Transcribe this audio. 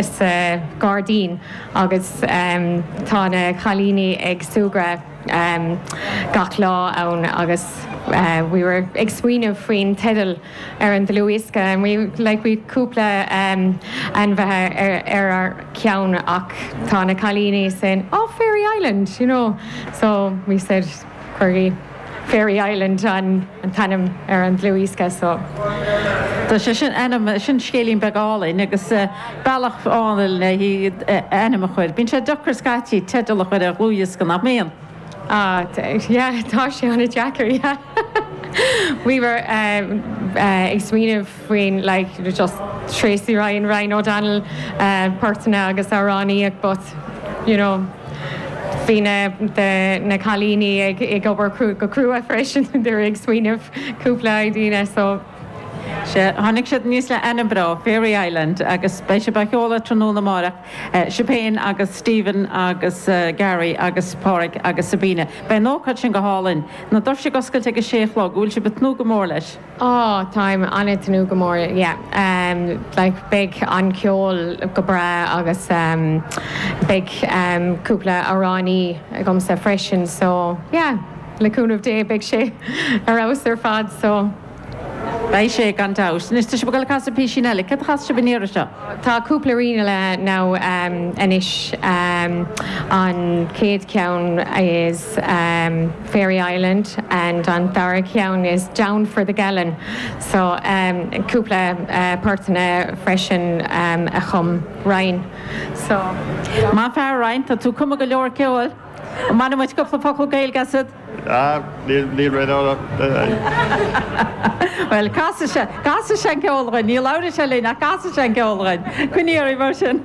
sa ghairdín agus tá na cailíní ag súgradh gach lá ann agus we were ag smaoineamh faoin teideal ar an dlúthdhiosca and we like we cúpla ainmneacha inár gceann ach tá na cailíní saying oh fairy island you know so we said we'll call it Fairy Island an t-ainm ar an dlúthdhiosca so. Tá sé sin sin scéilín beag álainn agus bealach álainn le ainm a chur. Bíonn sé deacair scaití teideal a chur ar dhlúthdhiosca, nach mbíonn? Ah yeah tá sé an-deacair yeah. We were ag smaoineamh. faoin like you're just Tracey Ryan, Ryan O'Donnell poirteanna agus amhránaíocht but you know bhí na the na cailíní ag ag obair go crua freisin they were ag smaoineamh cúpla idea so tháinig siad aníos leis an ainm Fairy Island agus beidh sibh á sheoladh tráthnóna amárach Siobhán agus Stephen agus Gary agus Páraic agus Sabina beidh an ócáid sin go hálainn na doirse ag oscailt ag a sé a chlog an bhfuil sibh ag tnúth go mór leis. Oh táim ag tnúth go mór yeah like beidh an ceol go breá agus beidh cúpla amhránaí agamsa freisin so yeah le cúnamh Dé beidh sé ar fheabhas ar fad so. Beidh sé gan dabht. Anois tá sibh ag dul ag casadh písín eile. Céard a chasfas sibh an iarraidh seo? Tá cúpla ríleanna now anois an chéad cheann is. Fairy Island and an dara ceann is Down for the Gallon. So cúpla poirteanna freisin a chum Ryan. So. Maith an fear Ryan, tá tú ag cumadh go leor ceoil. An mbainfidh muid cúpla focal Gaeilge asad? Ah, níl, níl rud eile ann. Bhuel, casfaidh sé, casfaidh sé an ceol dhúinn. Níl amhras orainn ach casfaidh sé an ceol dhúinn. Coinnígí oraibh mar sin.